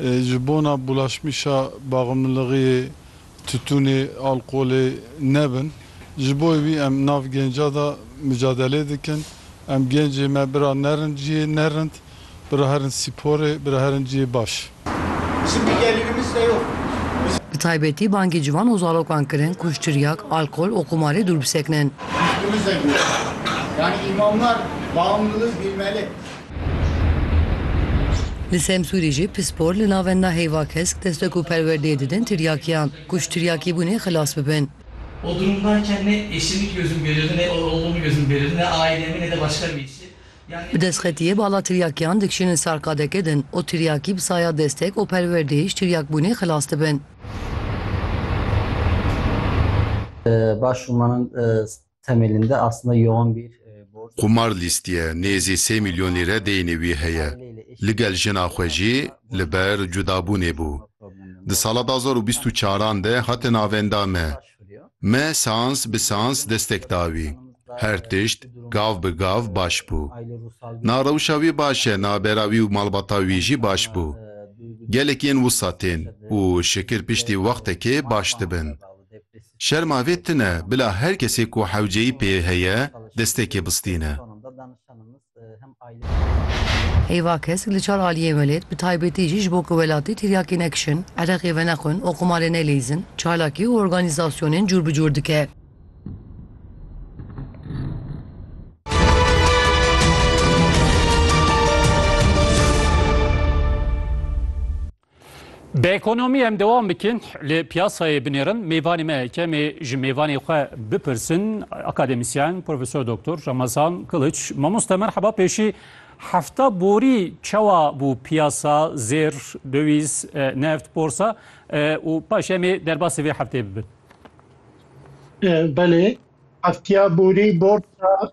ji bona bulaşmîşa baxmilixiyê, tutûnê, alkolê nebin. Ji bo wî em nav genca de micadelê dikin. Em gencê me bira nerin ciyê nerind, bira herin sîporê, bira herin ciyê baş. Bi taybetî bangê ciwan û zalokan kirin ku ji tiryak, alkol û qumarê dûr bisekinin. Li Semsûrê jî pispor li navenda heyva kesk destek û perwerdeyê didin tiryakiyan ku ji tiryakîbûnê xilas bibin. Bi destxetiyê bala tiryakiyan dikişînin ser qadeke din û tiryakî bi saya destek û perwerdeyê ji tiryakbûnê xilas dibin. Temelinde aslında yoğun bir borç. Qumar lîstiye nêzî sê mîlyon lîre deynê wî heye. Ligel jina xwe jî li ber cudabûnê bû. Di sala du hezar û bîst û çaran de hate navenda me. Me seans bi seans destek da wî. Her tişt gav bi gav baş bû. Na rewşa wî baş e, navbera wî û malbata wî jî baş bû. Gelekî yên wisa tên û şikir piştî wextekê baş dibin. Şerma vê tune bila her kesê ku hewceyî pê heye destekê bistîne. Heyva kesk li çar aliyê welêt bi taybetî jî ji bo ku welatî tiryakê nekişin, ereqê venexwin û qumarê nelîzin, çalakî û organîzasyonên cûr bi cûr dike. Bi ekonomî em dewam bikin li piyasayê binêrin mêvanê me kemê ji mêvanê xwe bipirsin akademîsyen Profesor Doktor Ramazan Kiliç mamoste merheba pêşî hefta borî çawa bû piyasa zêr dewîz neft borsa û paş em ê derbasê vê heftê bibin. Belê heftiya borî borsa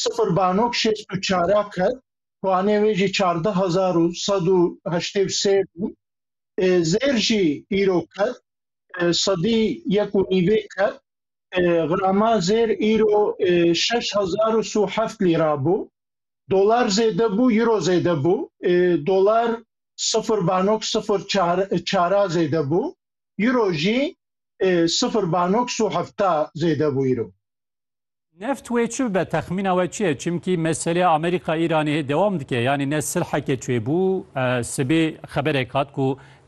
Sifir banok şêst û çara qet, puanê wê jî çardeh hezar û sed û heştê û sê bû. Zêr jî îro qet, sedî yek û nîvê qet. Grama zêr îro şeş hezar û si û heft lîra bû. Dolar zêde bû, îro zêde bû. Dolar sifir banok sifir çara zêde bû. Îro jî sifir banok si û hefta zêde bû îro. Neft wê çi bibe? Texmîna we çi ye? Çimkî meseleya Amerîka-Îranê dewam dike. Yanî ne silheke çêbû, sibê xeberek hat ku